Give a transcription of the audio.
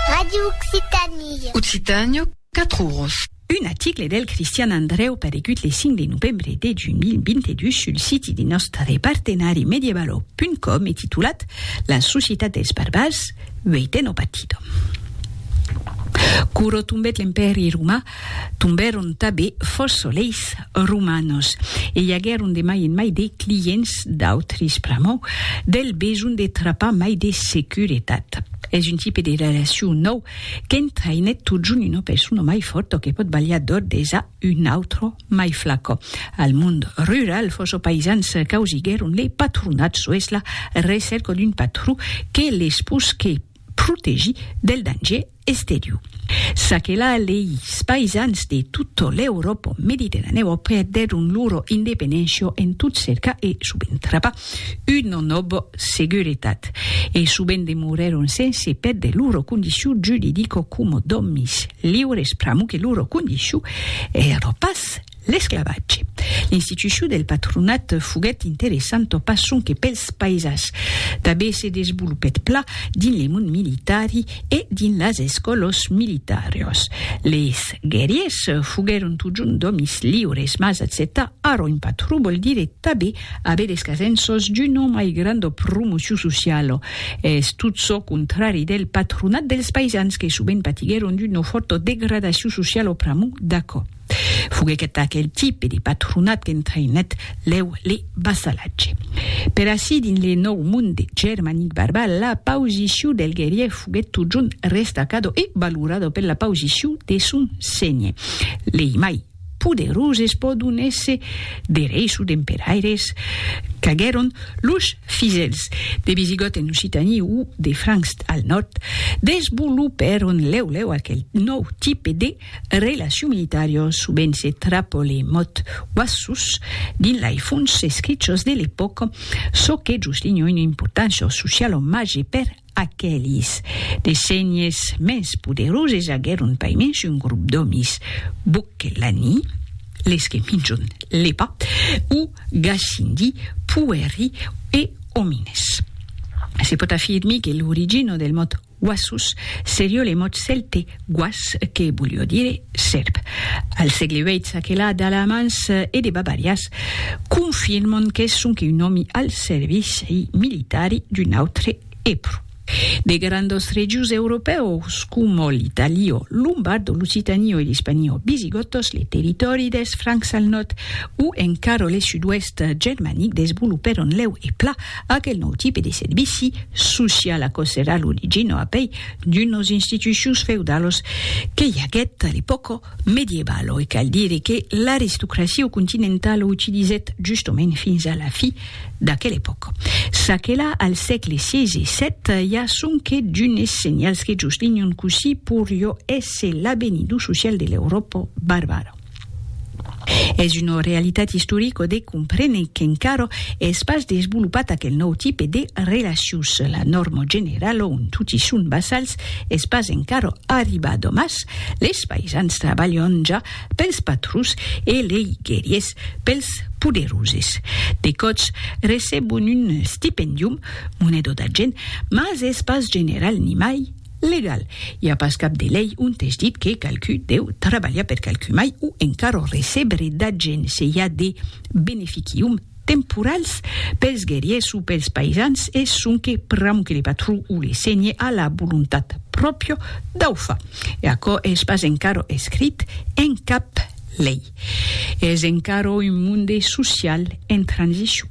Radio Occitània. Occitània, 4 oros. Un aticle del Cristian Andrèu paregut le 5 de novembre de 2022 sul siti de nòstre partenari medievalo.com e titulat La societat dels barbars, uèiten o patidom. Quò rotombèt l'Empèri roman Tombèron tanben fòrça solets romanos e i aguèron de mai en mai de clients d'autris pr'amor del besonh de trapar mai de seguretat. Es un tipe de relacion nòu qu'entraïnèt totjorn una persona mai fòrta que pòt balhar d'òr des a un autre mai flaca. Al mond rural, fòrça païsans causiguèron le patronat soes la recèrca d'un patró que les posque protegir del danger Estériu. Ça que la leis paisans de tutto l'Europo mediterraneo perdèron loro independencio en tot cerca e subent trapa un non ob seguretat e subent demorèron sense pèrdre loro condiciu judidico como d'òmis liures pramo que loro condiciu ero pas L'esclavatge. L'institucion del patronat foguèt interessanta pas sonque pels paisans, tanben se desvolopèt pla dins le mond militari e dins las escòlas militàrias. Leis guerriers foguèron totjorn d'òmis liures, mas acceptar ara un patron vòl dire tanben aver es casenças d'una mai granda promocion sociala. Es tot çò contrari del patronat dels paisans que sovent patiguèron d'una fòrta degradacion sociala pr'amor d'aquò. Foguèc aquel tipe de patronat qu'entraïnèt lèu le vassalatge. Per ací, dins le nòu monde germanic barbar, la pausicion del guerrier foguèt totjorn restacado e valorado per la pausicion de son senhe. Lei mai poderoses pòdon èsser de reis o d'emperaires qu'aguèron los fidèls de Visigòt en Occitània o de Francs al nòrd, desvolopèron lèu lèu aquel nòu tipe de Relaciu militario subent se trapo le mot uassus dins lei fonts escrichos de l'epòca, çò que jusligna una importància sociala o màger per aquelis. De senhes mens poderoses aguèron pas mens un grop d'òmis, Boccellani, les que minjon lepa, o Gasindi, puèri e òmines. Se pòt afirmir que l'origina del mot Wassus, serio le mot cèlte was que volió dire sèrp. Al sègle viii aquela d'Alamans e de Bavarias confirmon qu'es sonque un òmi al servici militari d'un autre Eprus. De grandos regius europèus coma l'Italiò Lombardo, l'Occitaniò e l'Ispaniò Visigòtos, le territòri dels Francs al nòrd o encara le sud-oèst germanic desvolopèron lèu e pla Aquel nòu tipe de servici social aquò serà l'origina a pei d'unas institucions feudalas que i aguèt a l'epòca medievalo e cal dire que l'aristocracia continentala utilizèt justament fins a la fi d'aquela epòca. Çaquelà al sègle xvi e xvii i a sonque d'unes senhals que juslinhan cossí poriá èsser l'avenidor social de l'Euròpa barbara. Es una realitat istorica de comprene qu'encara es pas desvolopat aquel nòu tipe de relacions. La nòrma generala ont toti son vassals es pas encara arribada, mas les païsans trabalhan ja pels patrons e lei guerriers pels poderoses. De còps recebon un stipendium, moneda d'argent, mas es pas general nimai. Legal. I a pas cap de lei ont es dit que qualcú deu trabalhar per qualcú mai o encara recebre d'agent se i a de beneficium temporals pels guerriers o pels paisans e sonque pr'amor que le patró o le senhe a la volontat pròpia dau far. E aquò es pas encara escrit en cap lei. Es encara un monde social en transicion.